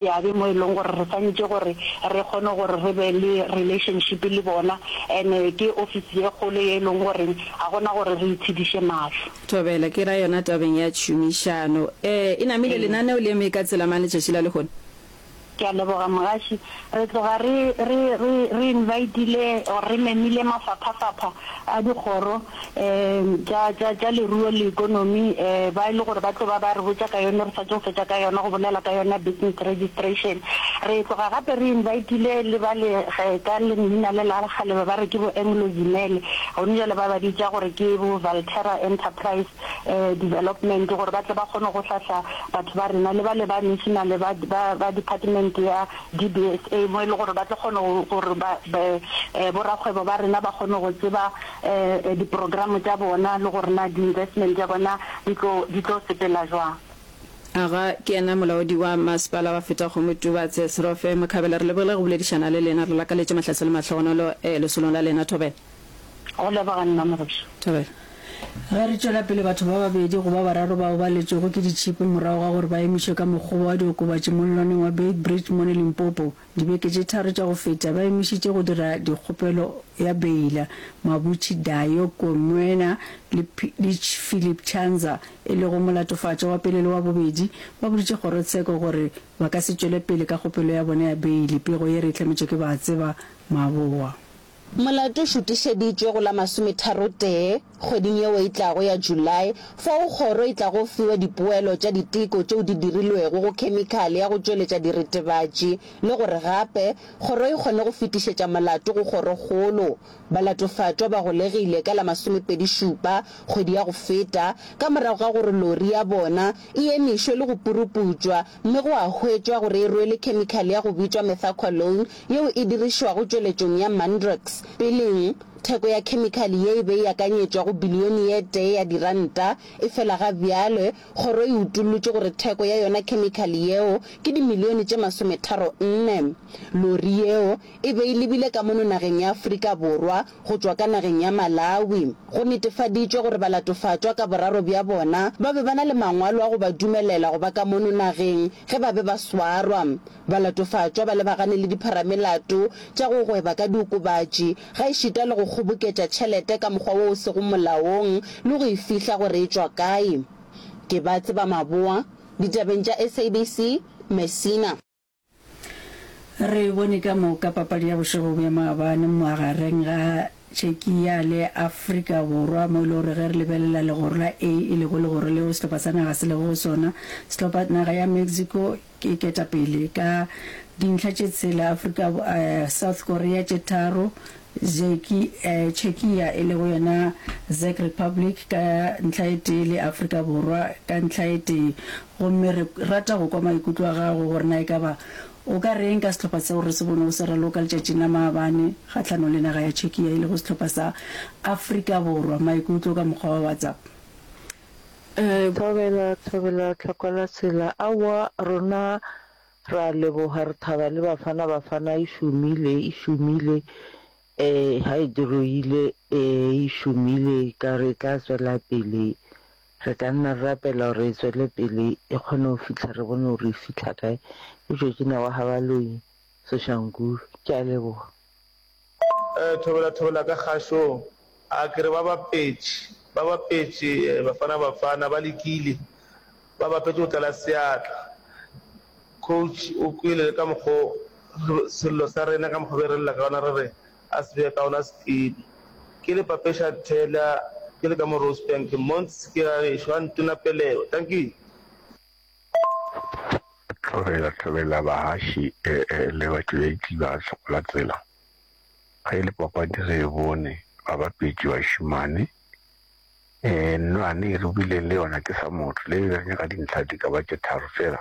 ya be mo e leng gore re swanetše gore re kgone gore re be le relationship le bona and ke office ye kgolo ye e leng gore ga gona gore re itshediše mahlo. Thobela, ke ra yona tabeng ya tšhomišano e e namile lenaneo le eme ka tsela mang letšatši la lehono? Ke a leboga mogaši, re tloga re re re re invitile or re memile mafaphafapha a dikgoro um tša, tša, tša leruo le economy, um ba e le gore ba tlo ba ba re botša ka yone, re sa tšo go fetša ka yona go bolela ka yona business registration. Re tloga gape re invite-ile le ba le, ka leina le la kgale be ba re ke bo Anglo Zimele, gone bjale ba ba bitša gore ke bo Valterra Enterprise, um Development, gore ba tle ba kgone go hlahla batho ba rena, le ba le ba national ba, ba, ba department ya DBSA, mo e le gore ba tlo kgona go, gore ba, ba, um borakgwebo ba rena ba kgone go tseba diprogramo tša bona le gore na di-investment tša bona di tlo, di tlo sepela jwang. Aga ke yena molaodi wa Masepala wa Fetaghomo Dubatse Serofe Mokhabela. Re lebogile go boledišana le lena. Re lakaletše mahlatse le mahlogonolo lesolong la lena. Thobela. Go leboga nna Moreši. Thobela. Ge re tšwela pele, batho ba babedi go ba bararo bao ba letšwego ke ditšhipi morago ga gore ba emišwe ka mokgoba wa diokobatši mollwaneng wa Beitbridge mone Limpopo, Dibeke tše tharo tša go feta ba emišitše go dira dikgopelo ya beila Mabuchi Dayo Komuena le Ph Philip Chanza e lego molatofatšwa wa pele le wa bobedi, ba boditše kgorotsheko gore ba ka se tšwele pele ka kgopelo ya bona ya beile pego ye re e hlametšwe ke baatseba maboa. Molato o šutišeditšwe go la masometharotee kgweding yeo e tlago ya July, fao kgoro e tlago fiwa dipoelo tša diteko tšeo di dirilwego go khemikhale ya go tšweletša diritebatši le gore gape kgoro e kgone go fetišetša molato go kgorokgolo. Balatofatšwa ba golegile ka la masomepedi šupa kgwedi ya go feta ka morago ga gore lori ya bona e emišwe le go puruputšwa mme go a hwetšwa gore e rwele khemikhale ya go bitšwa methaqualone yeo e dirišwago tšweletšong ya mandrax. Peleng, theko ya khemikhale ye e be e akanyetšwa go bilione ye tee ya diranta, efela ga bjale kgoro e utollotše gore theko ya yona khemikhale yeo ke dimilione tše masometharo nne. Lori yeo e be e lebile ka mono nageng ya Afrika Borwa go tšwa ka nageng ya Malawi. Go netefaditšwe gore balatofatšwa ka boraro bja bona ba be ba na le mangwalo a go ba dumelela go ba ka mono nageng ge ba be ba swarwa. Balatofatšwa ba lebagane le dipharamelato tša go gweba ka diokobatši gaešita le go kgoboketša tšhelete ka mokgwa wo o sego molaong le go e fihla gore e tšwa kae. Ke ba tseba maboa. Ditabeng tša SABC, Messina. Re bone ka moka papadi ya bošego bja maabane magareng ga Tšhekia le Afrika Borwa mo e le gore ge re lebelela legoro la A e lego legoro leo sehlopha sa naga se lego go sona, sehlopha naga ya Mexico ke ketapele ka dintlha tše tshela, Afrika, South Korea tše tharo, Tšhekia e lego yona Czech Republic ka ntlha e tee le Afrika Borwa ka ntlha e tee. Gomme re rata go kwa maikutlo a gago, gore na e ka ba o ka re'ng ka sehlopha seo re se bonego se raloka letšatšing la maabane kgahlanong le naga ya Czechia, e lego sehlopha sa Afrika Borwa. Maikutlo ka mokgwa wa WhatsApp. Ee, Thobela, Thobela, Tlhakwalatshela, Aowa, rona re a leboga, re thaba le Bafana, Bafana e šomile, e šomile, ee, ha e draw-ile, ee, e šomile, ka re e tla tswela pele. Re ka nna re rapela gore e tswele pele e kgone go fihla re bone gore e fihla kae. Ke tšwetše na wa gaba Loyi, Soshanguve. Ke a leboga. Eh, thobela thobela ka kgašo. A ke re ba bapetše, ba bapetše Bafana Bafana, ba lekile. Ba bapetše go tlala seatla. Coach o kwele le ka mokgo Sello sa rena ka mokgo be re lla ka gona re re A se bea ka ona sekete. Ke le papeša Teller ke le ka mo Rosebank Monts ke ga gešo a ntona pelego. Dankie. Tlogela tlogela bahaši le batšweletši ba sokola tsela ge e le papadi re e bone ba bapetši bašemane nonwane e rubileng le yona ke sa motho le e berekanya ka dintlha di ka ba tše tharo fela.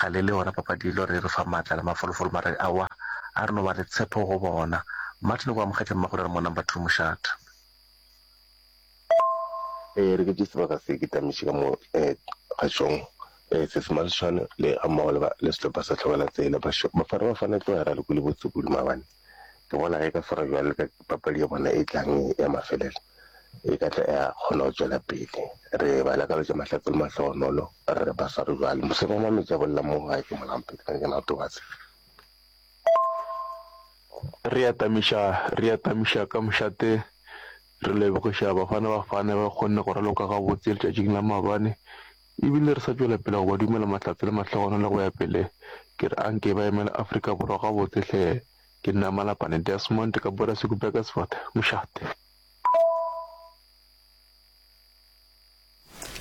Ga le le gona papadi e le gore e re fa maatla le mafolofolo, mara aowa, a re no ba le tshepo go bona. Martin o kwa Mokgatšhe Mmakgole a re mo number two mošate. Ee, re ketše sebaka se ke tamiši ka mo kgatšong se se maleshwane le ga mmogo le sehlopha sa tlhoka la tsela ba fana tlo ya ra le kule botse kudu maabane. ke bona ge ka swara bjalo ka papadi ya bona e tlang ya mafelelo e ka tla ya kgona go tšwela pele re ba lakaletša mahlatse le mahlohonolo re re ba sware bjalo mosego wa mametša bolela mo gae ke molampe ke ke na tobatse re atamiša re atamiša ka mošate re lebogiša bafana bafana ba kgonne go raloka gabotse letšatšing la maabane E bile re sa tšwela pele go ba dumela mahlatse le mahlogwana le go ya pele, ke re anke ba emele Afrika Borwa gabotse hle. Ke nna Malapane Desmond ka Bodasiku Burgersfort, Mošate.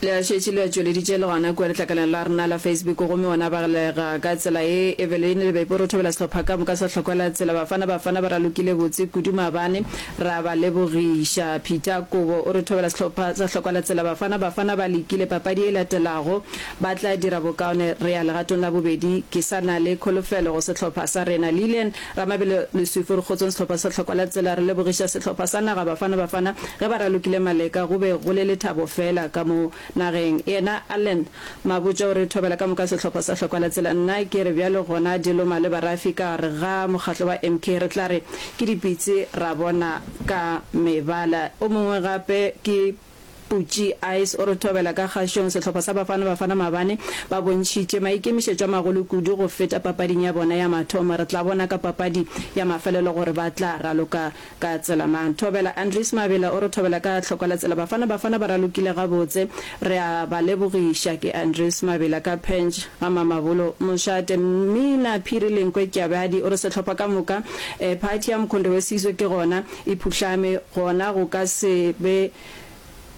Le a šetše le tšweleditše le gona kua letlakaleng la rena la Facebook gomme wa nabagelega ka tsela ye e bele ne le beporothobela sehlopha ka moka sa hlokwa la tsela. Bafana Bafana ba ralokile botse kudu maabane Ra ba lebogiša. Peter Kobo o re thobela sehlopha sa Hlokwa la Tsela. Bafana Bafana ba lekile papadi e latelago. Ba tla dira bokaone. Re ya legatong la bobedi. Ke sa na le kholofelo go sehlopha sa rena. Lilian Ramabele Lesufi o re kgotsong sehlopha sa Hlokwa la Tsela. Re lebogiša sehlopha sa naga Bafana Bafana ge ba ralokile Maleka. Go be go le lethabo fela ka mo Nageng. Yena, Allen, Mabotja o re thobela ka moka sehlopha sa hlokwa la tsela. Nna ke re bjalo gona di loma le barafi ka gare ga mokgatlo wa MK. Re tla re ke dipitsi ra bona ka mebala. O mongwe gape ke Putši Ice o re thobela ka kgašong. Sehlopha sa Bafana Bafana mabane ba bontšhitše maikemišetšo a magolo kudu go feta papading ya bona ya mathomo. Re tla bona ka papadi ya mafelelo gore ba tla raloka Ka tsela mang? Thobela, Andries Mabela o re thobela ka hloko la tsela Bafana Bafana ba ralokile gabotse. Re a ba lebogiša. Ke Andries Mabela ka Peng ga Mamabolo Mošate. Mmina Phiri Lenkwe Kyabadi o re sehlopha ka moka, party ya Mkhondowesizwe ke gona e phuhlame, gona go ka se be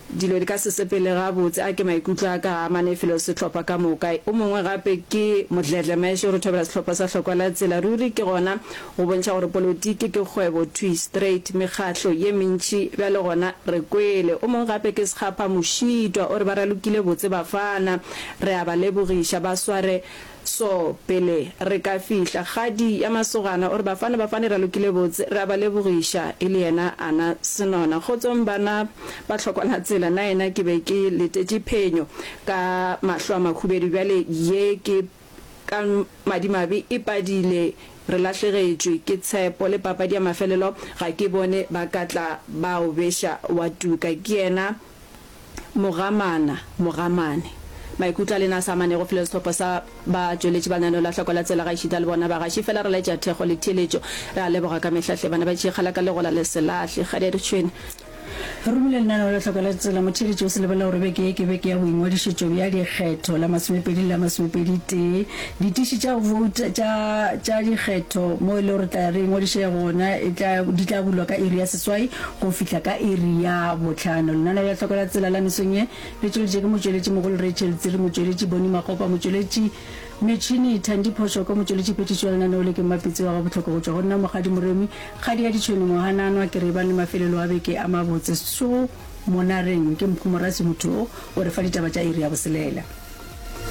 Dilo di ka se sepele gabotse. A ke maikutlo a ka a amane felo sehlopha ka moka? O mongwe gape ke Modledlemeshe, Re thobela sehlopha sa hlokwa la tsela. Ruri ke gona go bontšha gore politiki ke kgwebo thwi straight. Mekgahlo ye mentši bjale gona re kwele. O mongwe gape ke Sekgapha Mošitwa, o re ba ralokile botse bafana. Re a ba lebogiša. Ba sware So pele re ka fihla kgadi ya masogana o re Bafana Bafana ra lokile botse re a ba lebogiša e le yena Ana Senona Kgotsong bana ba Tlhokwalatsela na yena ke be ke letetše phenyo ka mahlo a mahubedu bjale ye ke ka madimabe e padile re lahlegetšwe ke tshepo le papadi ya mafelelo ga ke bone ba ka tla ba o beša wa tuka ke yena Mogamana, Mogamane, maikutlo a lena a sa amanego felo sehlopha sa ba tšweletši ba lenaneo la Hloko la Tsela gaešita le bona ba gaši fela re laetša thekgo le theeletšo. Re a leboga ka mehla hle bana ba tšhiekgala ka legola le selahle. Kgadedi Tšhwene. Re romile lenaneo la Hloko la Tsela motheeletšo o se lebelela gore beke ye ke beke ya boingwadišetšo bja dikgetho la masomepedi le la masomepedi tee Ditiši tša go vouta tša tša dikgetho moo e lego gore re tla ya re ingwadiše gona e tla, di tla bulwa ka iri ya seswai go fihla ka iri ya bohlano. Lenaneo la Tlhoka la Tsela la mesong ye le tšweleditše ke motšweletši-mogolo Rachel Tsiri, motšweletši Bonnie Makgopa, motšweletši metšhini Thandi Phoshoko, motšweletši phethišo ya lenaneo le ke Mmapitsi wa Gabohloko go tšwa go nna Mokgadi Moremi, Kgadi ya Ditšhwene Mohananwa, ke re e bang le mafelelo a beke a mabotse so monareng. Ke Mpho Morasi Motho o re fa ditaba tša iri ya boselela.